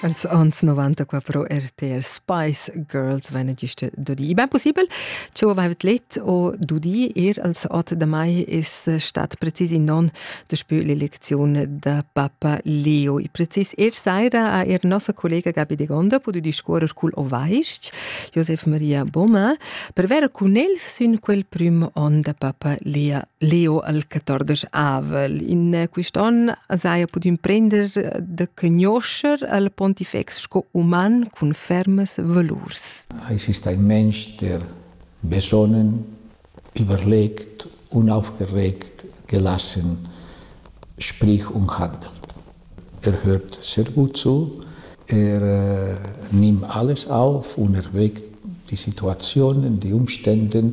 als ans 94 RTR Spice Girls venne giusto dudi. Ben possibel, ci avevet let o dudi er als ot da mai es stat precis in non de spö l'elezione da Papa Leo. I precis er saira a er nossa collega Gabi de Gonda podu discuorer cul ovaisch Josef Maria Boma per ver cun el sün quel prim on da Papa Lea Leo al 14 avel. In eh, quist'on as haja pudü imprender eh, da cognoscher al pontifex sco uman cun fermas valurs. Exista in mensch, der besonnen, überlegt, unaufgeregt gelassen sprich und handelt. Er hört sehr gut zu, er äh, nimmt alles auf und erwägt die Situationen, die Umstände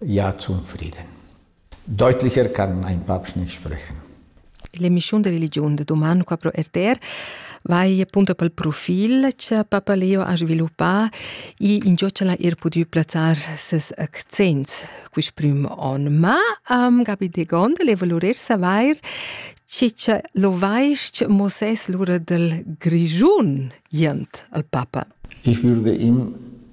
Ja zum Frieden. Deutlicher kann ein Papst nicht sprechen. L'emischiun de religiun de doman qua pro RTR vai appunto pel profil che Papa Leo ha sviluppà e in giocala ir pudü plazzar ses accents quist prim on. Ma um, Gabi de Gondel volorer savair chi che lo vaist mo ses lura del Grigiun jent al Papa. Ich würde ihm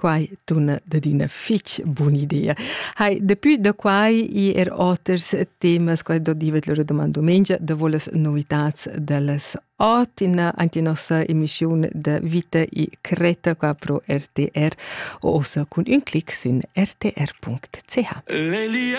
Quai tuna dad üna fich bun'idea. Hai, dapü da quai i er oters temas, quai do divet lura doman dumengia, davo las novitats da las ot in anche nossa emissiun da Vita e Creta qua pro RTR o ossa cun ün clic sin rtr.ch. L'Elia